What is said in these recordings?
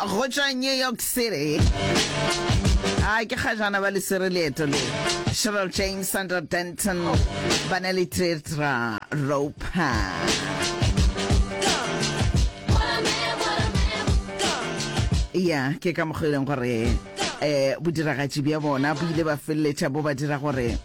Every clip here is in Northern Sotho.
go tšwa new york city a ke kgajana ba lesere leeto le cheryl james sandra denton ba ne le tretra roper ya ke ka mokgweleng gore um bodiragatši bja bona bo ile ba feleletša bo ba dira gore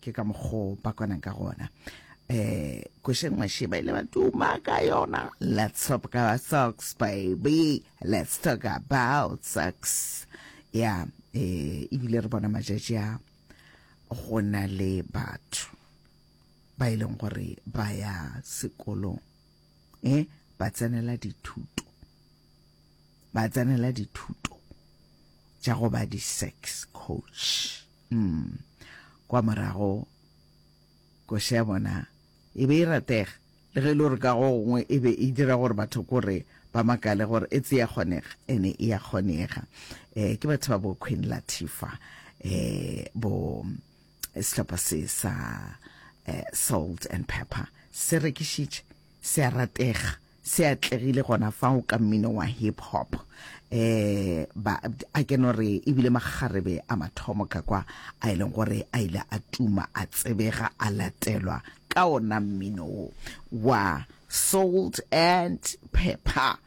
ke ka mokgo ba kwanang ka gona eh kosheng mashi ba ile ba tuma ka yona let's talk about socks baby let's talk about socks ya eh ebile re bona matšatši a go na le batho ba e leng gore ba ya sekolong eh ba tsenela dithuto ba tsenela dithuto tša go ba di sex coach mm. kwa morago koša ya bona e be e ratega le ge e le gore ka go gongwe e be e dira gore batho kore ba makale gore e tse ya kgonega ene e ya kgonega um ke batho ba bo queen latifa um bo Sehlopha se sa eh, Salt and Pepper se rekišitše se a ratega se atlegile gona fao ka mmino wa hip hop eh ba a ke no re ebile magarebe a mathomo ka kwa a e leng gore a ile a tuma a tsebega a latelwa ka ona mmino wa salt and pepper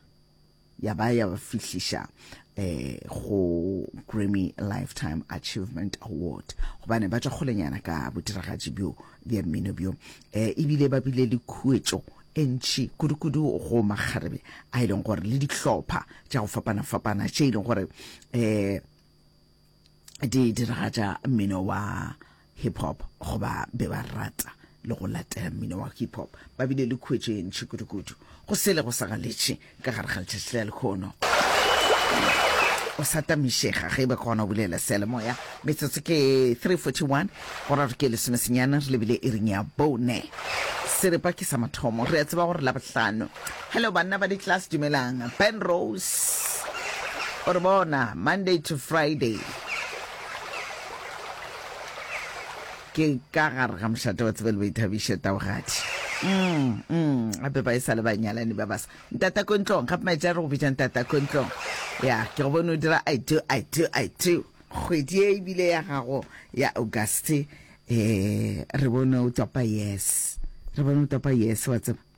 ya ba ya ba fihliša eh go Grammy Lifetime Achievement Award gobane ba tšwa kgolenyana ka bodiragatši bjo bja mmino bjo eh ebile ba bile le khuetšo e ntši kudu-kudu go makgarebe a e leng gore le dihlopha tša go fapana-fapana tše e leng gore eh di diragatša mmino wa hip hop go ba be ba rata le go latela mmino wa hip hop ba bile le khuetšo e ntšhi kudukudu go sele go sa galetše ka gare ga letšatši la lekgono o sa tamišega ge e be kgona go bulela sealemoya metsotso ke 341 gora re ke lesomesenyana re lebile e reng ya bone seripa ke sa mathomo re a tseba gore la bohlano Hello banna ba di class dumelang. Ben Rose. Or bona Monday to Friday. Ke ka gare ga mošate wa tsebele ba ithabiše taogadi. Mm, mm, gape ba e sa le banyalani ba basa. Ntata ko ntlong, gape maitse a re go bitša ntata ko ntlong. Ya, ke go bone o dira I do, I do, I do. Kgwedi e ebile ya gago ya Auguste eh re bone o topa yes. Re bone o topa yes wa tseba.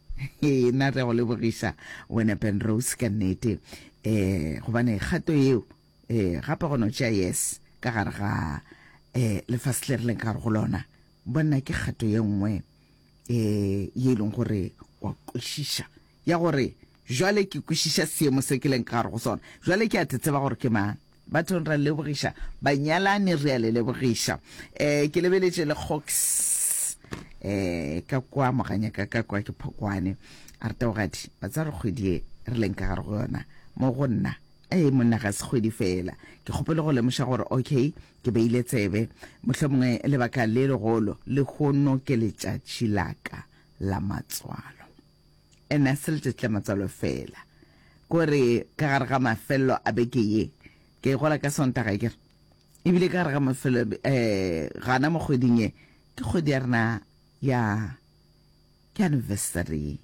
Hee na re a go lebogiša wena Penrose ka nnete um gobane kgato yeo um gape go no tšea yes ka gare ga um lefase le re leng gare go lona bonna ke kgato ye nngwe um ye e leng gore wa kwešiša ya gore jwale ke kwešiša seemo se ke leng ka gare go sona jwale ke a te tseba gore ke mang Bathong ra lebogiša, banyalani re a le lebogiša. Eh, ke lebeletše le Gox eh ka kwa moganya ka ka kwa ke phokwane a re taogadi ba tsa re kgwedi e re leng ka gare go yona mo go nna ee monna ga se kgwedi fela ke kgopele go lemoša gore okay ke beile tsebe motlho mongwe lebaka le legolo le gono ke letšatši laka la matswalo And a se letšatši la matswalo fela, ko re ka gare ga mafelelo a beke ye, ke a igola ka sontaga ke re, ebile ka gare ga mafelo eh gana mo kgweding ye ke kgwedi ya rena ya ke anniversary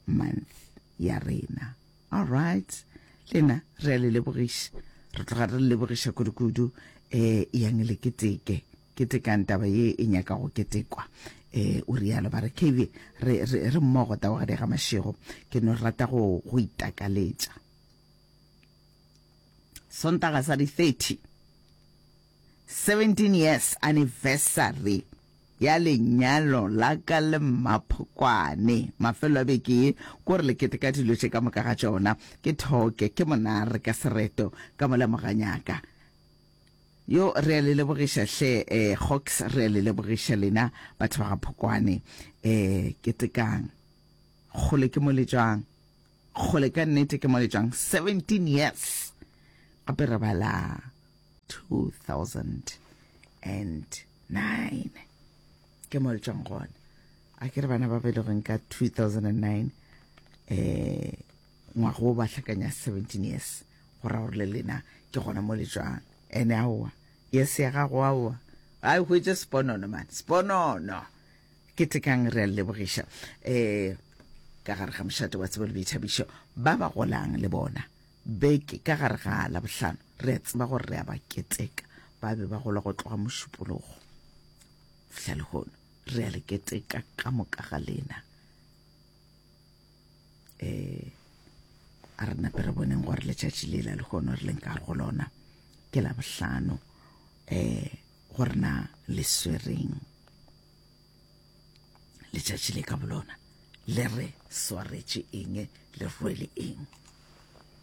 month ya rena all right lena re a le lebogiša re tloga re le lebogiša kudu kudu eh yang le keteke Ketekang taba ye e nyaka go ketekwa, e, o realo. Ba re, Kevie, re, re, re mmogo taogadi ga mašego. Ke no rata go, go itakaletša. Sontaga sa di 30. 17 years anniversary ya lenyalo la ka le mmaphokwane mafelo a beke ye ko re le keteka dilo tše ka moka ga tšona ke thoke ke monare ka sereto ka mo lemoganyaka Yo, re a le lebogiša hle, eh, Hawks, re a le lebogiša lena batho ba ga Phokwane. Eh, ketekang. Kgole ke mo le tšwang. Kgole ka nnete ke mo le tšwang. 17 years. Gape re bala 2009. Ke mo le tšwang gona. A ke re bana ba belegweng ka 2009. Eh, Ngwaga wo ba hlakanya 17 years, go ra gore le lena ke gona mo le tšwang. Ene aowa, years ya gago aowa, a e hwetše sponono man, sponono. Ke tekang re a lebogiša eh ka gare ga mošate wa tsebo le boithabišo ba ba golang le bona beke ka gare ga la bohlano re a tseba gore re a ba keteka ba be ba gola go tloga mošupologo fihla lehono re a le keteka ka moka ga lena eh a re nape re boneng gore letšatši le la lekgono re leng ka go lona ke la bohlano eh gore na le swereng letšatši le ka bolona le re swaretše eng le rwele eng